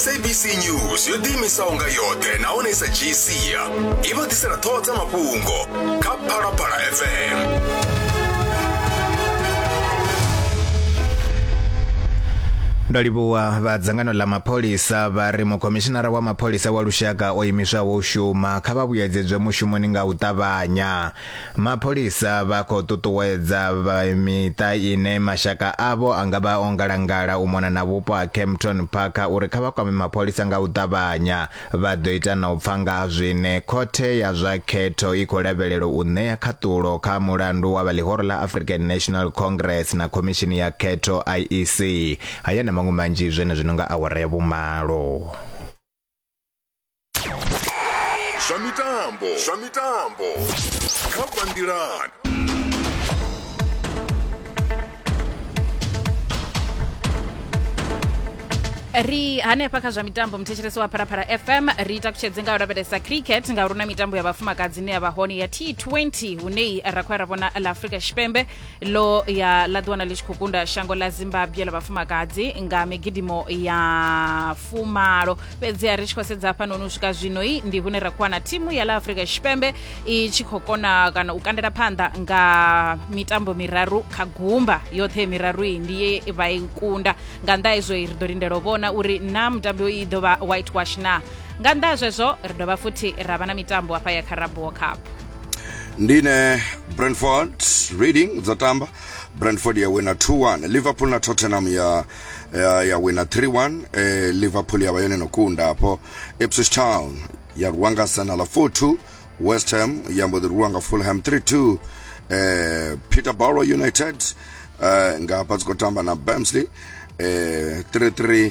sabc news yo ḓiimisaho nga yoṱhe nahone i sa dzhii sia i vha ḓisela ṱhoho dza mafhungo kha phalaphala fm ndo livhuwa vha dzangano ḽa mapholisa vha ri mukhomishinara wa mapholisa wa lushaka o imiswaho u shuma kha vha vhuyedzedzwe mushumoni nga u ṱavhanya Mapholisa vha khou ṱuṱuwedza vha miṱa ine mashaka avho a nga vha o ngalangala u mona na vhupo ha Kempton Park uri kha vha kwame mapholisa nga u ṱavhanya. Vha ḓo ita na u pfa nga ha zwine Khothe ya zwa Khetho i khou lavhelelwa u ṋea khaṱulo kha mulandu wa vha ḽihoro ḽa African National Congress na Khomishini ya Khetho, IEC. Haya na maṅwe manzhi zwenezwino nga awara ya vhumalo. zwa mitambo zwa mitambo kha bandilan ri hanefha kha zwa mitambo muthetshelesi wa pharapara fm ri takutshedze nga u lavhelesa cricket ngauri na mitambo ya vhafumakadzi ine ya vha hone ya t20 hune ra khou ya ra vhona la afrika tshipembe lo ya ḽa ḓiwana ḽi tshi khou kunda shango ḽa zimbabwe ḽa vhafumakadzi nga migidimo ya fumalo fhedziha ri tshi khou sedza hafhanoni u swika zwinoi ndi hune ra khou wana thimu ya ḽa afrika tshipembe i tshi khou kona kana u kandela phanḓa nga mitambo miraru kha gumba yoṱhe miraru iyi ndi ye vha i kunda nga nnḓa hezwo ri ḓo lindela u vhona uri na mutambi i ḓo vha whitewash na nga nnḓa ha zwezwo ri dovha futhi ra vha na mitambo hafha ya caraboo cup ndine brentford reading dzatamba brentford yawina 2-1 liverpool na tottenham ya ya, ya wina 3-1 eh, liverpool yavha yone nokunda apo ipswich town ya rwiwa nga arsenal 4-2 west ham yambo ḓi rwiwa nga fulham 3-2 eh, peterborough united eh, nga hafha dzi khou tamba na bamsley eh, 3-3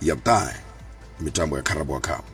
ya vhuṱahe mitambo ya carabao cup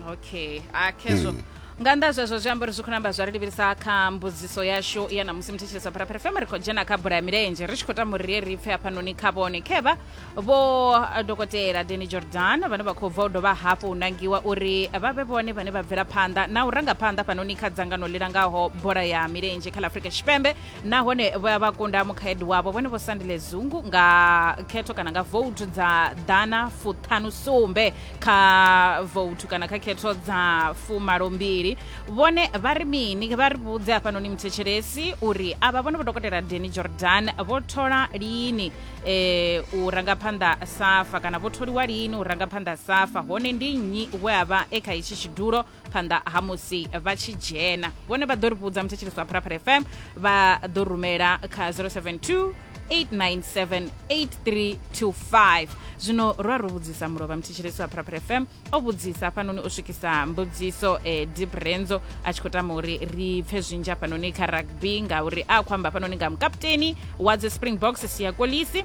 okay a khezwo mm. nga nnḓa zwezwo zwi amba uri zwi khou namba zwa ri livhilisa kha mbudziso yashu ya namusi muthetshelesa pharapara fm ri khou dzhena kha bola ya milenzhe ri tshi khou tamba uri ri ri pfe hafhanoni kha vhone khevha vho eh, dokotela deni jordan vhane vha khou bva u dovha hafhu u nangiwa uri vha vhe vhone vhane vha bvela phanḓa na u ranga phanḓa fhanoni kha dzangano ḽi langaho bola ya milenzhe kha ḽa afrika tshipembe nahone vho ya vha kunda mukhaedu wavho vhone vho sandile zungu nga khetho kana nga voutu dza ḓana fuṱhanu sumbe kha voutu kana kha khetho dza fumalo mbili vhone vha ri mini vha ri vhudze hafhanoni muthetshelesi uri avha vhone vho dokotela deni jordan vho thola lini um u ranga phanḓa safa kana vho tholiwa lini u ranga phanḓa safa hone ndi nnyi we a vha e kha itshi tshidulo phanḓa ha musi vha tshi dzhena vhone vha ḓo ri vhudza muthetshelisi wa pharapara fm vha ḓo rumela kha 072 8978325 zwino ro a ro vhudzisa mulovha muthetshelesi wa pharapara fm o vhudzisa hafhanoni o swikisa mbudziso e eh, deep renzo a tshi khou tama uri ri pfhe zwinzhi hafhanoni kha rugby ngauri a khou amba hafhanoni nga mukaputeni wa dzi springboks siya kolisi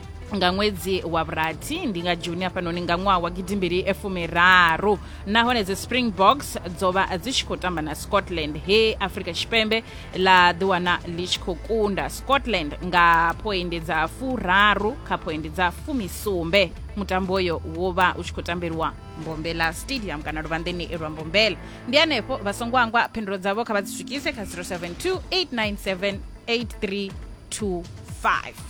nga ṅwedzi wa vhurathi ndi nga juni hafhanoni nga ṅwaha wa gidimbili fumiraru nahone dzi springboks dzo vha dzi tshi khou tamba na scotland he afrika tshipembe ḽa ḓiwana ḽi tshi khou kunda scotland nga phoindi dza furaru kha phoindi dza fumisumbe mutambo uyo wo vha u tshi khou tambelwa mbombela stadium kana luvhanḓeni lwa mbombela ndi hanefho vha songo angwa phindulo dzavho kha vha dzi swikise kha 072 897 8325